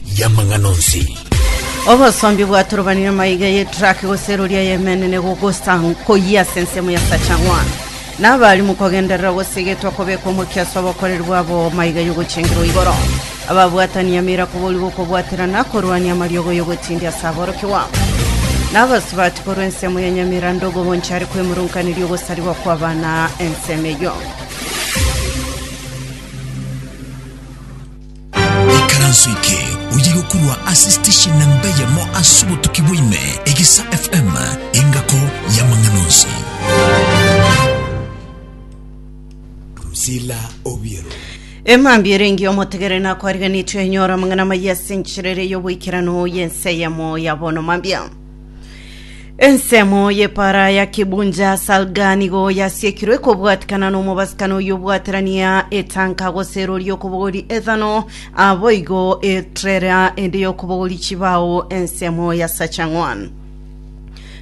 y'amang'ana onsi. Obosombi bwatorobanire maiga y'etraki gose erori eyemenene gogosa nkoyia ase ensemo ya Sachang'wa. Nabarimu kogenderera gose egetwa kobekwa omokia ase obokoreri bwabo maiga y'ogochengerwa igoro. Ababwatani emeira koboria gokobwatera na korwania amariogo y'ogotindia ase aborokigwa. Nabasubati korwa ensemo ya Nyamira Ndogo bonchare kwemurunkaneria ogosarigwa kw'abana ensemo eyio. Ikaranso eke oye gokurwa ase station namba eyemo ase obotuki bwaime, Egesa FM, engako y'amang'ana onsi. Sila Obiero. emambia erengi omotegere nakwariganetwe enyora amang'ana amaya ase enchirere y'oboikerano y'ense eyemo ya bono mambia Ensemo y'epaara ya Kibunja Salga nigo yasiekirwe kobwatikana n'omobasikano oyio obwaterania etanka gose erori y'okobogori ethano, aboigo etrera ende y'okobogori chibao ensemo ya sacha ng'wan.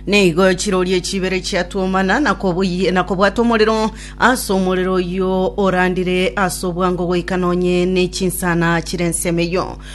Nigo chirori echi ibere chiatuomana na kobuyi- na kobwata omorero ase omorero oyio orandire ase obwango goika nonye ne chinsana chire ensemo eyio.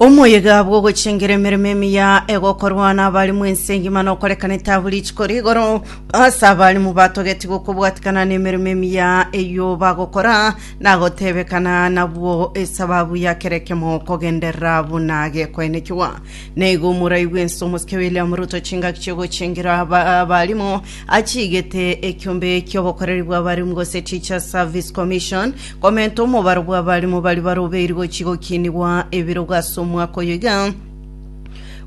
Omoyega bw'ogochengera emeremo emiya egokorwa n'abarimu ense engima nokorekana etabu richiko rigoro ase abarimu batogeti gokobwatikana n'emeremo emiya eyio bagokora nagotebekana nabwo esababu ya kera ekemo kogenderera buna gekoenekigwa. Naigo moraigwe ense omosike William Ruto chingaki chiogochengera aba- abarimu achigete ekiombe ki'obokoreri bw'abarimu gose Teachers Service Commission Komenta omobaro bw'abarimo baria barobeirwe gochia gokiinigwa ebirogo ase omwaka oyo iga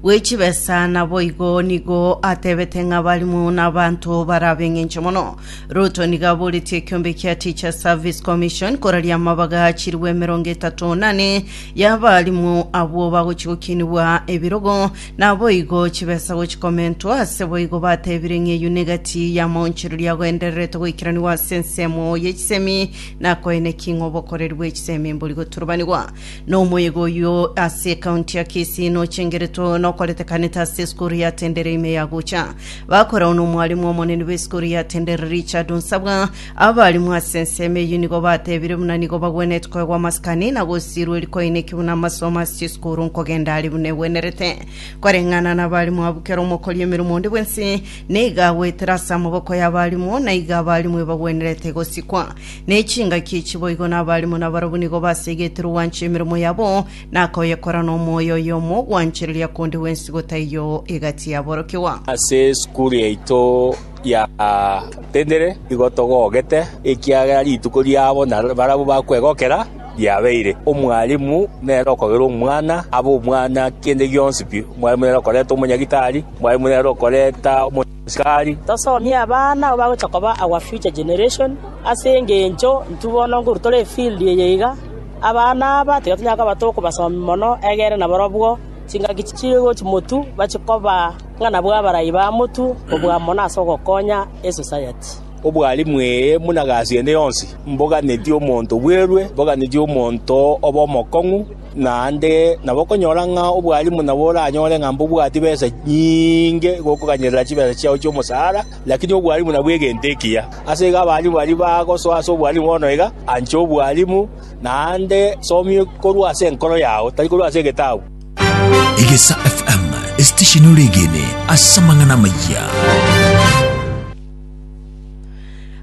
bwe chibesa, naboigo nigo atebete ng'a abarimo n'abanto barabe engencho mono. Ruto nigo aboretie ekeombe kia Teacher Service Commission koraria amabaga achirwe emerongo etato nane y'abarimo abwo bagochia gokiinigwa ebirogo Naboigo chibesa gochikomentwa, ase boigo batebire ng'a eyio negati y'amaonchorerio agoendererete goikeranigwa ase ensemo y'echisemi, na koene ki ng'a obokoreri bw'echisemi mbori goturubanigwa. Nomoyega oyio ase ekaunti ya Kisii nochengeretwe nokoretekanete ase esukuru ya Tendere ime yagocha. Bakorao nomwalimu omonene bw'esukuru ya Tendere Richard Nsabwa, Abaalimu ase ensemo eyio nigo bateebire buna nigo bagwenerete koegwa amasikani na gosiirwa eeri koineki buna amasomo ase chisukuru nkogenda aria buna egwenerete. Koreng'ana nabaalimu abwo kera omokori emeremo onde bwensi nigo agoetera ase amaboko y'abaalimu, na igo abaalimu ebagwenerete gosikwa. Ne chingaki echi boigo nabaalimu nabarabwo nigo baseigetie rogwancha emeremo yabo na koyekora nomoyo oyomo ogwanchereria konde gwensi gotaiyo egati yaborokigwa. Ase esukuru yaito Yatendire, nigo togogete, ekiagera rituko riabo na barabwo bakwegokera riabeire. Omwalimu nere okogerwa omwana, abe omwana kende gionsi pi. Omwalimu nere okoreta omonyagitari, omwalimu nere okoreta omosikari. Tosomie abana abwo bagocha koba our future generation, ase engencho intwe bono nkorwa tore efield eye iga, abana aba tiga tonyara koba tokobasomi mono egere nabarobwo chingaki chichigochi motu bache koba. ng'a nabwo abarai ba motu obwamo na ase ogokonya esosayati. Obwalimu eye buna gasi ende yonsi, mboganeti omonto bwerwe, mboganeti omonto obe omokong'u, naende nabokonyora ng'a obwalimu nabo oranyore ng'a mbobwati besa nyinge gokoganyerera chibesa chiao chi'omosara, lakini obwalimu nabwo egento ekiya. Ase igo abalimu baria bagosoa ase obwalimu bono iga, ancha obwalimu, naende somia korwa ase enkoro yao, tari korwa ase egetabu. Egesa FM, esitesheni ore egene ase amang'ana amayia.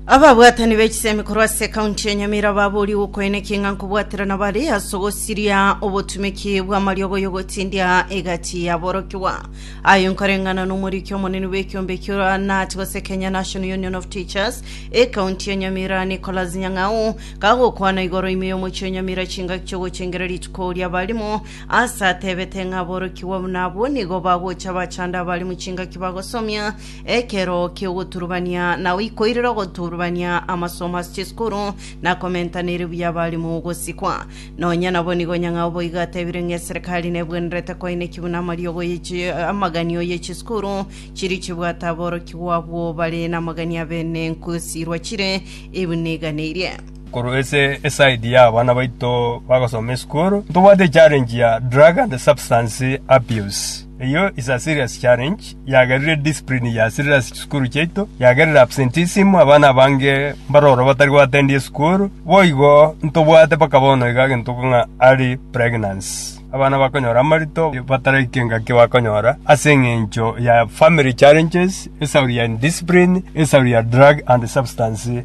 ababwatani b'echisemi korwa ase ekaunti ya nyamira babori gokoenekia ng'a nkobwaterana bare ase ogosiria obotumeki bw'amariogo y'ogotindia egati yaborokigwa ayo nkoreng'ana n'omoriki omonene bw'ekiombe ekio nati gose kenya national union of teachers ekaunti ya nyamira nicholas nyang'au kagokwana igoro ime y'omochie nyamira chingaki chi'ogochengereria rituko ri'abarimo Ase atebete ng'a aborokigwa buna abwo nigo bagocha abachando abare mochingaki bagosomia ekero ki'ogoturubania na oikoirera ogoturubania amasomo ase chisukuru na komentaneri buya abalimu gosikwa. Nonya nabo nigo Nyang'au boigo atebire ng'a eserekari nebwenerete koineki buna amariogo ye chi- amaganio ye chisukuru chiri chibwate aborokigwa abwo bare namagania bene nkosiirwa chire ebu niganeirie. korwa ase eside ya abana baito bagosoma esukuru ntobwate echallenge ya drug and substance abuse eyo is a serious challenge yagerire discipline ya serious sukuru chiaito yagerire absenteeism abana abange mbaroro batari goatendi esukuru boigo ntobwate mpaka bono iga egento ng'a early pregnancy abana bakonyora amarito bataraika engaki bakonyora ase eng'encho ya family challenges esauri ya indiscipline esauri ya drug and substance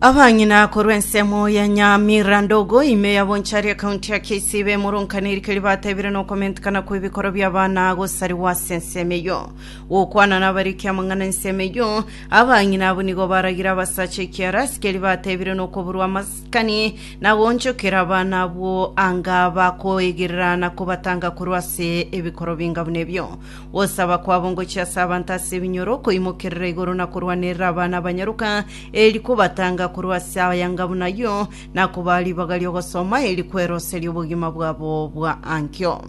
Abang'ina korwa ensemo ya Nyamira Ndogo, ime ya Bonchari, ekaunti ya Kisii, bemoronkaniri keria bateebire na okomentekana kw'ebikoro bi'abana gosarigwa ase ensemo eyio. Gokwana nabariki amang'ana ensemo eyio, abang'ina abwo nigo baragire abasacha ekiara ase keria bateebire na okoburwa amasikani na goonchokera abana abwo anga bakoegerera na kobatanga korwa ase ebikoro binga buna ebio. Gosaba kwabo ngochia ase abanto ase ebinyoro, koimokerera igoro na korwanerera abana abanyaroka, erio kobatanga korwa ase ayanga buna ayio, na kobaa ribaga ri'ogosoma, erio kweroserie obogima bwabo bwa ankio.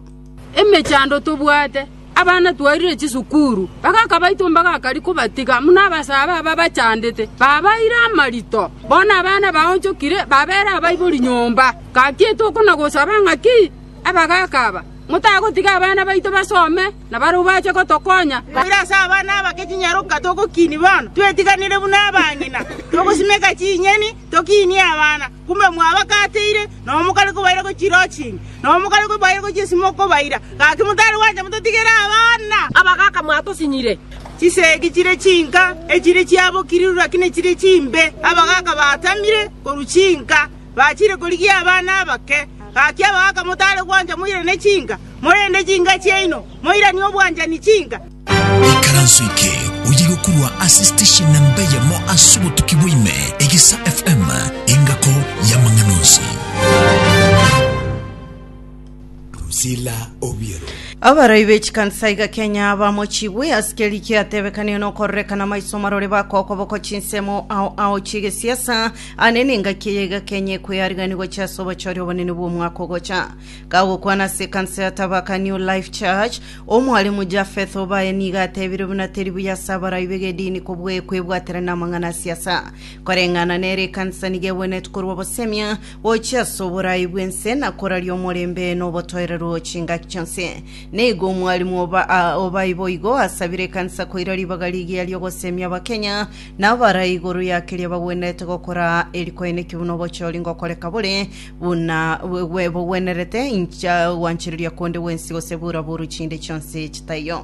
emechando tobwate abana twarire chisukuru bagaka baito mbagakari kobatiga muna abasaaba aba bachandete babaire amarito bono abana baonchokire babere abaibori nyomba gaki etokona gosaba ng'aki abagaka aba motagotiga abana baito basome, na barabwo bache gotokonya. Koira ase abana abake chinyaroka togokini bono, twetiganire buna abang'ina, togosimeka chinyeni, tokinie abana, kumbe mwabakateire, nonya mokare kobaira gochia chirochingi, nonya mokare kobaira gochia esimo kobaira, gaki motare gwancha mototigere abana. Abagaka mwatosinyire. Chisegi chire chinka, echire chiabokire ruru, lakini echire chimbe, abagaka baatamire korwa chinka. Bachire korigia abana abake. Gaki abagaka motare gwancha moirane chinka, morende chinka chiaino moiranie obwanchani chinka. Ikaranso eke oyio gokorwa ase station namba eyemo ase obotuki bwa ime, Egesa FM, engako y'amang'ana onsi. Drusilla Obiero. Abarai be chikansa iga Kenya bamochigwe ase keri kiatebekanio na okorerekana maiso marore baka okoboko chinsemo ao ao chiegesiasa ane na engaki eye iga Kenya ekoyarigani gocha ase obochori obonene bw'omwaka ogocha. Kagokwana ase ekansa ya Tabaka New Life Church, omwalimu Japheth Obaye nigo atebire buna teri buya ase abarai b'egedini kobwe- kwebwaterania na amang'ana a siasa. Koreng'ana nere ekansa nigo egwenerete korwa obosemia, Gochia ase oboraai bw'ense na koraria omorembe na obotoereru chingaki chionsi. Nigo omwarimu oba, a, obayi boigo asabire ekanisa koira ribaga rigiya ri'ogosemia Abakenya na abarai igoro ya keria bagwenerete gokora erikoenekio buna obochori ngokoreka bore buna bwe- bwe- bogwenerete inche gwanchereria konde gwensi gose buraburu chinde chionsi chitaiyo.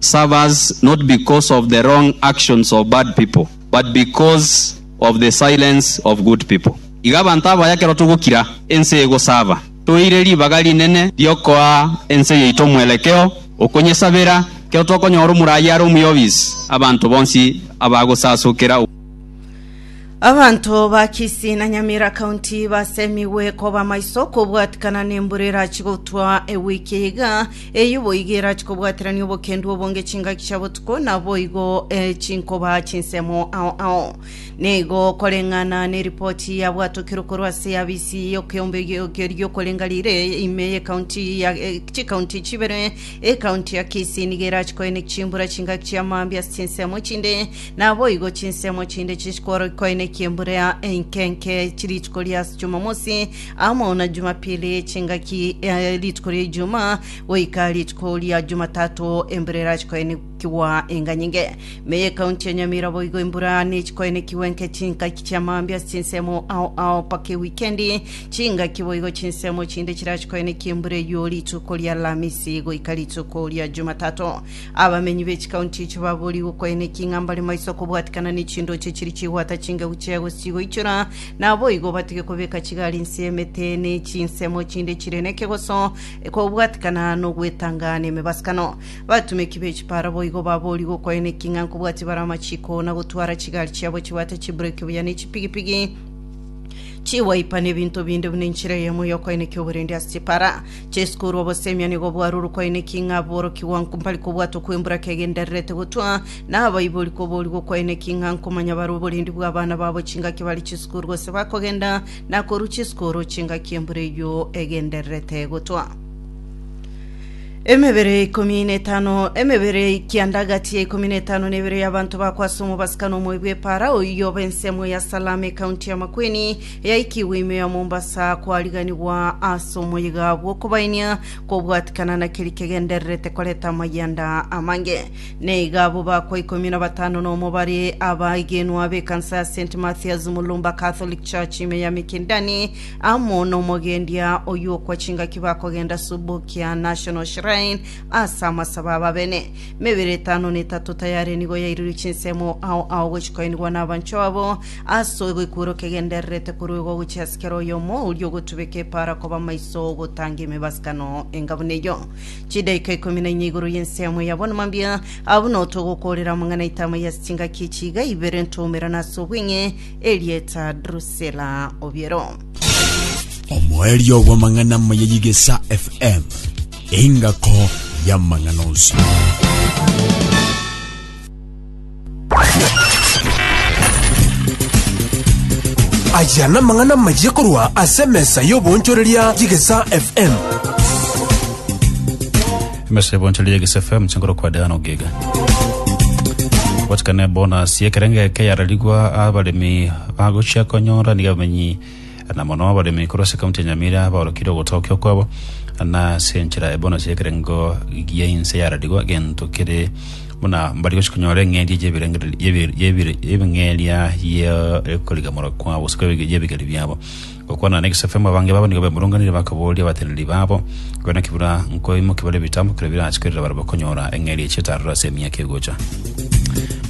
serve us not because of the wrong actions of bad people, but because of the silence of good people. Iga abanto abaya ekero togokira, ense egosaba. Toire ribaga rinene riokoa ense yaito omwerekeo okonyesabera. Ekero tokonyora omoraia are omuya obis, abanto bonsi abagosasokera. Abanto ba Kisii na Nyamira County basemigwe koba maiso kobwatikana nembura erachi gotwa ewiki eye iga Eyio boigo erache kobwaterania obokendu obonge chingaki chia botuko, naboigo chinkoba chinsemo ao ao. Nigo koreng'ana neripoti yabwatokerwe korwa ase y'abisi y'okeombe ri'okorenga rire ime y'ekaunti ya chikaunti chibere. Ekaunti ya Kisii nigo erache koena chimbura chingaki chia mambia ase chinsemo chinde, naboigo chinsemo chinde chinchikwa koenekia embura enkenke chirituko ria Jumamosi Amo na Jumapili, chingaki eh, rituko ria Ijuma goika rituko ria Jumatato embura erache koenekigwa enganyinge. Meye ekaunti ya Nyamira boigo embura nechikoenekigwa enke chingaki chia maambia ase chinsemo ao ao mpaka ewikendi. Chingaki boigo chinsemo chinde chirache koenekia embura eyio rituko ria Alamisi goika rituko ria Jumatato. Abamenyi b'echikaunti echi baboorigwe koenekia ng'a mbare maiso kobwatikana ne chindoche chiri chigwata chingegu chia egosii goichora Naboigo batige kobeka chigari inse y'emete ne chinsemo chinde chire nekegoso, ekobwatikana nogwetanga nemebasakano. Batumeki be chipara boigo baboria gokoeneki ng'a nkobwatia bare amachiko na gotwara chigari chiabo chibwate chibureki buya ne chipigipigi chiwaipa nebinto binde buna enchera eyemo y'okoenekia oborende ase chipara chesukuru. Obosemiani igo bwarure okoeneki ng'a borokigwa nko mpari kobwatwa kw'emburaka egendererete gotwa na abaibori koboorigwa okwaine ki ng'a nkomanya bare oborendi bw'abana babo chingaki bare chisukuru gose bakogenda na korwa chisukuru chingaki embura eyio egendererete gotwa. Emebere ikomi na etano emebere ekianda gati ya ikomi na etano na ebere y'abanto bakwasa omobasika na omoyo bw'epara oiyo oba ensemo ya Salama ekaunti ya Makueni yaikigwe ime ya Mombasa kwariganigwa ase omoyiga bw'okobainia kobwatikana na keri kegendererete koreta amayianda amange Naiga abwo bakwa ikomi na batano nomo bare abaigenwa b'ekansa ya St Mathias Mulumba Catholic Church ime ya Mikindani amo n'omogendia oyio okwa chingaki bakogenda Subukia National Shrine ase amasabo ababene. Mebere etano na etato tayare nigo yairirwe chinsemo ao ao gochi koinigwa n'abancho abo ase egekwero kegendererete korwa igo gochia ase kera oyomo oria ogotubeka epaara koba maiso gotanga emebasano enga buna eyio. Chidaika ikomi na inye igoro y'ense yamo ya bono mambia, abwo notogokorera amang'ana etama ya chingaki echiga ibere ntoumerana ase obweng'e erieta Drusela obiero. Omoerio bw'amang'ana amaya y'Igesa FM, engako y'amang'ana onsi. Aya namang'ana amayia korwa ase emesa y'obonchoreria y'Egesa FM. emesa ebonchoria yegisa fm chingoro kwa deano giga gotikana bonus yekerenge eke yararigwa abaremi bagochia konyora niga bamenyi na mono abaremi korwa ase County ya Nyamira baorokire ogotokia okwabo, na ase enchera ebonos y'ekerengo gia inse yaradigwa gento kere buna mbari gochia konyora eng'eria y'ebirengererio y'ebi- y'ebire- y'ebing'eria y'okorigamora kwabo ase y'ebigeri biabo. Gokwana na egesafemu abange babo nigo bemurunganire bakaboria abateneneri babo Korende naki buna nkoimokia bare ebitambo keria birache korera barabwo konyora eng'eria ya chitarero ase emiaka egocha.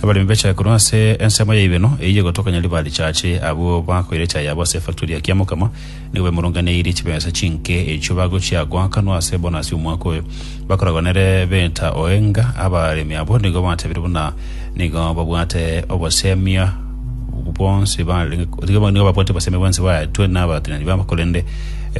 Abaremi bechae korwa ase ensemo ya Ibeno eyio egotokanya ribare chiache, abwo bakoira echae yabo ase efaktori ya Kiamokama nigo baimoronganeirie chibesa chinke echio bagochia goakanwa ase bonasi omwaka oyo. Bakoragwa nere Beta Oenga, abaremi abwo nigo batebirie buna nigo babwate obosemi bwonsi ba- nigo nigo babwate obosemi bwonsi baetwe n'abatenani babo korende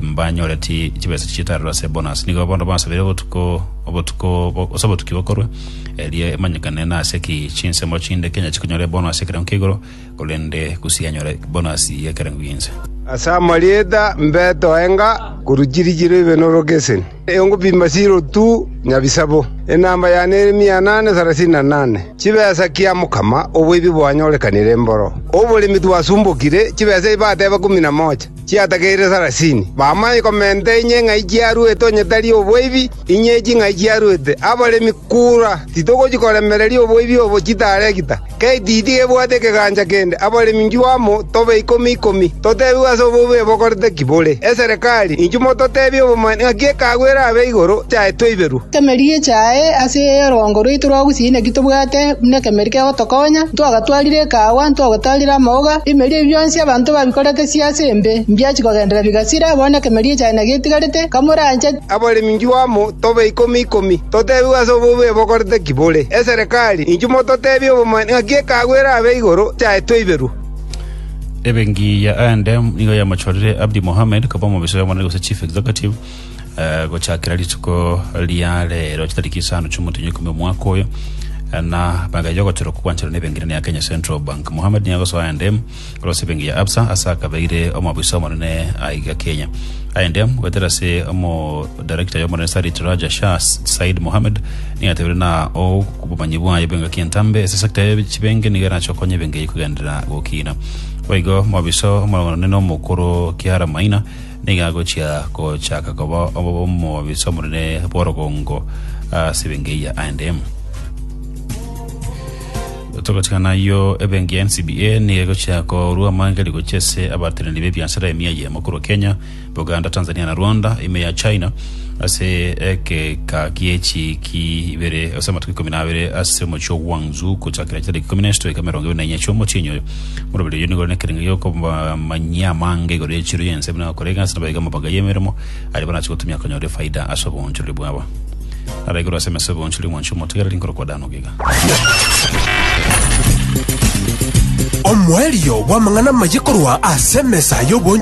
mbanyoreti chibesa chitarero ase bonus nigo bono basabire obotuko obotuko bo- ase obotuki bokorwa erie emanyekane nase ki chinsemo chinde kenya chikonyore bonus ekero nkeigoro korende gose yanyora bonasi y'ekerengo gi'ense. Ase amarieta mbeto enga korwa chiri chiro ibe n'orogeseni, engopima chirotu nyabisabo, enamba yane ere mia anane sarasini na nane. Chibesa kia mokama oboibi bwanyorekanire mboro oboremi twasumbokire, chibesa ebi bateba ikomi na mocha chiatageire sarasini. Bamanye komenta inye ng'ai chiaruete onye tari oboibi. Inye ching'ai chiaruete abaremi kura, titogochia koremereria oboibi obo chitaregita. K'etiti gebwate ekegancha kende abaremi inchuo amo tobe ikomi ikomi, totebigwe ase obobe bokorete ki bore. Eserekari, inchuo mototebie obomanyeku ng'aki ekeago erabe igoro yaye toiberwe. Ekemeeri gechae ase orongo rwaito rwa gusii naki tobwate buna ekemeeri kegotokonya, ntwagatwarire ekaagwa, ntwagotaarire amaoga, ebimeeri ebi bionsi abanto babikorete siase embe, mbiachia kogenderera bigasira, bono ekemeeri echae nagetigarete, kamorancheti. Abaremi inchuo amo tobe ikomi ikomi, totebigwe ase obobe bokorete ki bore. Eserekari, inchuo mototebie obomanyi ng'aki ekeago erabe igoro chiaetwe iberwe. Ebengiya aende nigo yamachorire Abdi Mohamed koba omobisa y'omonene gose Chief Executive eh, gochakera rituko ria rero chitariki isano chi'omotenyo ikomi omwaka oyo eh, na magaye y'ogochorwa kogwancherwa n'ebengirani ya Kenya Central Bank. Mohamed nigo agosoa aende Korwa Sibeng ya Absa ase akabeire omoabisa omonene aiga Kenya. Aende goetera ase omodarekita y'omonene Sarit Raja Shah Said Mohammed nigo atebire na obomanyi bwaye bw'engaki entambe ase sector ya chibenge nigo erache okonye ebenge eyio kogenderera gokiina. Boigo omoabisa omonene omokoro Kiara Maina nigo agochia gochaka koba omoabisa omonene bw'orogongo ase ebenge eyio aende. Togochika nayio, ebenki ya NCBA nigo egochia korua amangeri gochia ase abateneneri b'ebiasara emia eyemo korwa Kenya, Uganda, Tanzania na Rwanda, ime ya China ase egeka gie chiiki ibere ase amatuko ikomi na abere ase omochie o Guangzhou gochakera chitariki ikomi na isatu goika emerongo ebere na inya chi'omochienyi oyo. Moroberi oyio nigo ore nekerengo gi'okobamanyia amanga igoro y'echiro y'ense buna gokora egasi nabo iga amabanga y'emeremo aria barache gotumia konyora efaida ase oboonchorori bwabo. Ara igoro ase emeso y'oboonchorori mwanche omotegereri nkorokwa Dan Ogutu. Iga. Omoerio bw'amang'ana amaye korwa ase emesa y'obonchoreri.